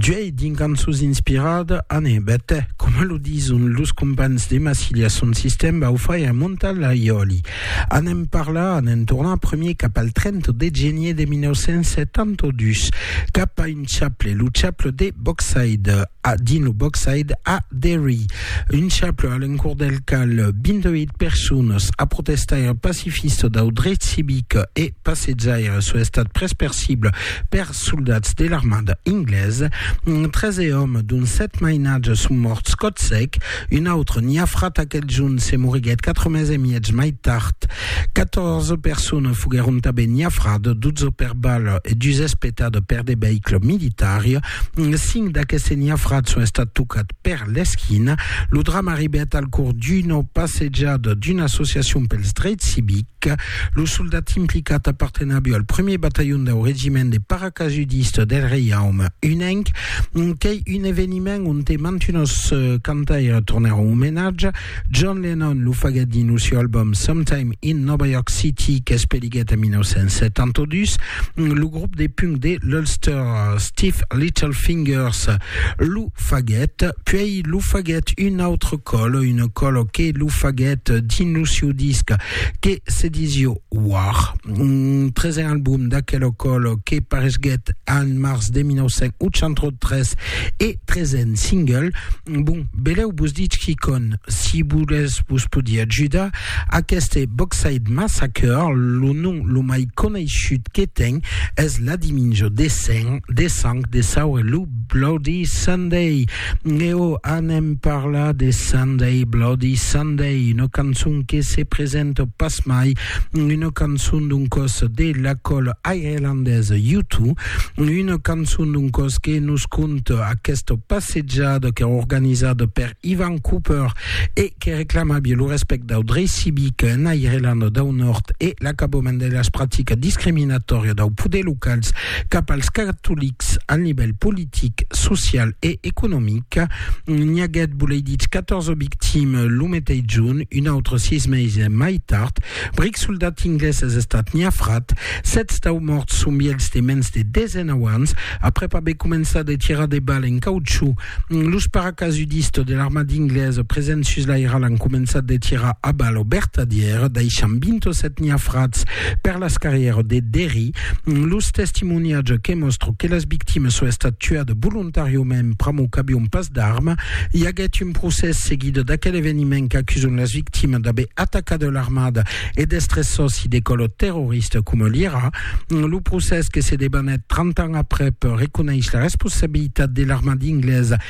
D'uèi dins cançons inspirada an e bèta, coma lo dison los compans de Massilia son sistèm bau fai a montar la iòli. Anem parlar, anem tornar, premier cap al 30 de genier de 1972, cap a Un chaple, lo chaple de Boxside, a dins lo Boxside a Derry. Un chaple a l'encòr del cal 28 personas a protestaire pacifista dau dret civic e passejaire son estat pres per cibla per soldats de l'armada inglesa. 13 òmes dont 7 mainatges son mòrts còt sec. Un autre niafrat aquel junh se moriguèt quatre mes e miètz mai tard. Catòrze personnes foguèron tanben niafrades, dotze per bala e dus espetada per de veïcles militari. Cinc d'aqueste niafrats son estat tocats per l'esquina. Lo drama arribèt al cors d'una passejada d'una associacion pels dreits civics. Lo soldat implicat apartenabio al premier batalhon dau regiment de paracasudistes del Reiaume Unenc, qu'ei un eveniment Eveniment onte mantunos cantaires tornèron omenatge. John Lennon lo faguèt dins lo seu album Sometime in Nova York City qu'espeliguèt en 1972 lo grop de punk de l'Ulster Stiff Little Fingers lo faguèt, puèi lo faguèt un autre còl, un còl que lo faguèt dins lo seu disc que se disió War, un tresen album d'aquel ocòl que paresguèt en març de 1983 e tresen single. Bon, beleu vos ditz quicon, si volètz vos podí ajudar, aqueste Boxside Massacre, lo nom lo mai coneishut que ten es La Diminjo de Sang de Saure Lou Bloody Sunday. Leo, anem parlar de Sunday, Bloody Sunday, una cançon que se presenta pas mai, una cançon d'un cos de la cola irlandesa U2, una cançon d'un cos que nos conta aquesta passejada que organizada per Ivan Cooper e que reclamabia lo respect dau drei civic en Irlanda dau Nord e l'acabament de las practicas discriminatòrias dau poder locals cap als catolics al nivèl politic politic, social e economic. N'i aguèt, volei ditz, 14 victimes lo meteis junh, un autre sis meses mai tard. Bric soldat inglés es estat niafrat. Sètz dau mòrts son vielhs de mens de 19 ans, aprèp aver començat de tirar de balles en cauchú. Los paracasudistes de l'armada inglesa presents sus l'airal an començat de tirar a balles au bertadièr, daishant 27 niafrats per las carrièras de Derry. Los testimoniatges que mòstro que las victimes son estat tuat volontàriament pr'amor qu'avion pas d'arma. I aguèt un procès seguida d'aquel eveniment qu'acuson las victimes d'aver atacat l'armada e d'estre sòci de còlo terrorista coma l'IRA. Lo procès que se debanèt 30 ans aprèp reconeis la responsabilitat de l'armada inglesa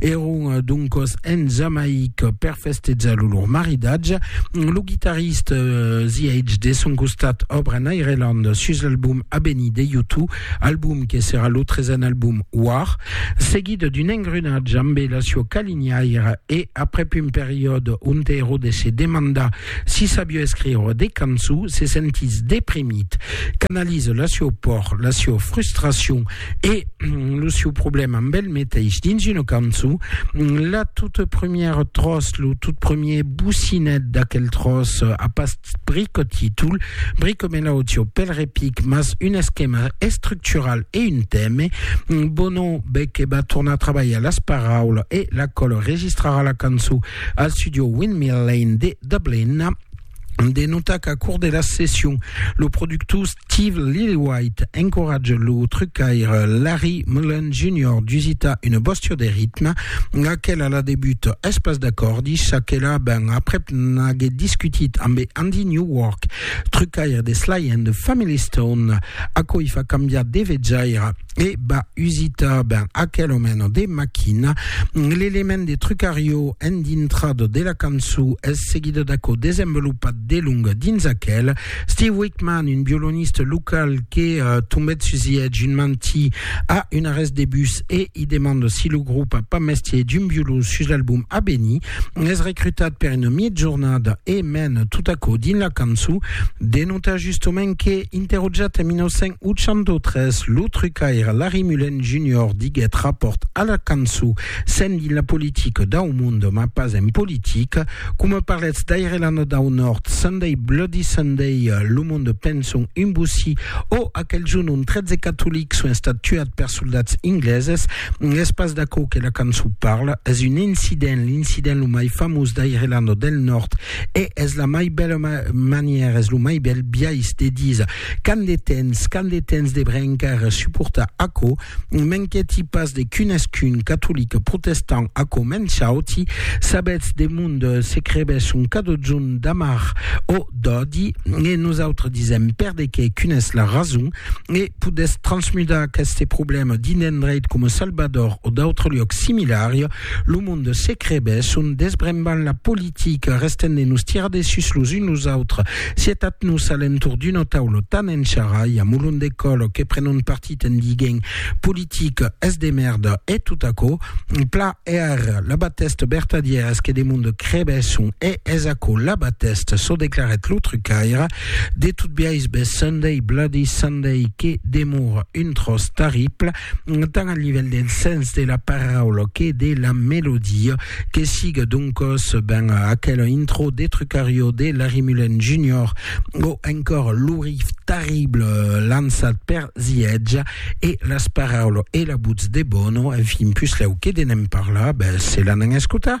Èron doncas en Jamaica per festejar lo lor maridatge. Lo guitarrista ZH de son costat òbra en Irelanda sus l'album Abeni de U2, album que serà lo tresen album War, seguit d'un engrunatge ambe la sua calinhaira e aprèp un periòde onte Herodes se demanda si sabiá escriure de cançons, se sentís deprimit, canaliza la sua paur, la sua frustracion E lo seu problèma amb el meteis dins una cançon, la toute première tros, lo tout premier bocinet d'aquel tros a pas brico títol, brico melòdio, pel repic, mas un esquema estructural e un teme. Bono Beque va tornar trabalhar las paraulas e la còl registrarà la cançon al studio Windmill Lane de Dublin. de notar qu'au cours de la session, lo productor Steve Lillywhite encoratja lo trucaire Larry Mullen Jr. d'usitar una bòstia de ritme, laquela a la debut es pas d'acòrdi, ça que la ben aprèp n'aguèt discutit ambe Andy Newark, trucaire de Sly and the Family Stone, aquò i fa cambiar de vejaira. e va usitar ben aquelo meno de machina. L'element de trucario en dintrado de la cançó es seguido d'aquò desenvolupat de long dins aquel. Steve Wickman, un violoniste local que uh, tombet sus ietge un mantí a un arrest de bus e i demanda si lo grup a pas mestier d'un violon sus l'album a venir, Es recrutat per una miègjornada e mèn tot aquò dins la cançó. De notar justament que, interrogat en 1983, lo trucaire Larry Mullen Junior diguèt rapòrt a la cançó sent dins la politica dau monde mas pas en politica, coma parlètz d'Irelanda dau Nòrd, Sunday Bloody Sunday, lo monde penson un bossí, o aquel jorn ont 13 catolics son estats tuats per soldats ingleses. Es pas d'aquò que la cançon parla, es un incident, l'incident lo mai famós d'Irelanda del Nòrd e es la mai bèla manièra, es lo mai bèl biais de díser qu'an de temps, qu'an de temps de brencar e suportar aquò, m'inquièti pas de qu'unesqu'un catolic protestant aquò me'n chauti, sabètz de mond se crebe son cadozon d'amar o d'òdi e nosautres disèm perdequé qu'un es la rason e podètz transmudar aqueste problèma dins d'endreit coma Salvador o d'autres luòcs similari, lo monde se crebès son desbrembant la politica, restènt de nos tirar dessus los uns los autres. Sietatz-nos a l'entorn d'una taula tan en charralha, molon de còl, que prenon partit en diguent politica es de mèrda e tot aquò. Pla e ar, la batèsta vertadièra es que de monde crebèsson e es aquò la batèsta, çò declarèt lo trucaire. De tot biais, bes Sunday Bloody Sunday que demora un tròç terrible, tant al nivèl del sens de la paraula que de la melodia, que siga doncòs ben aquela intro de Trucario de Larry Mullen Junior o encòra lo riff terrible lançat per The Edge e las paraulas e la votz de Bono, enfin, puslèu que de ne'n parlar, bes se l'an en escotar.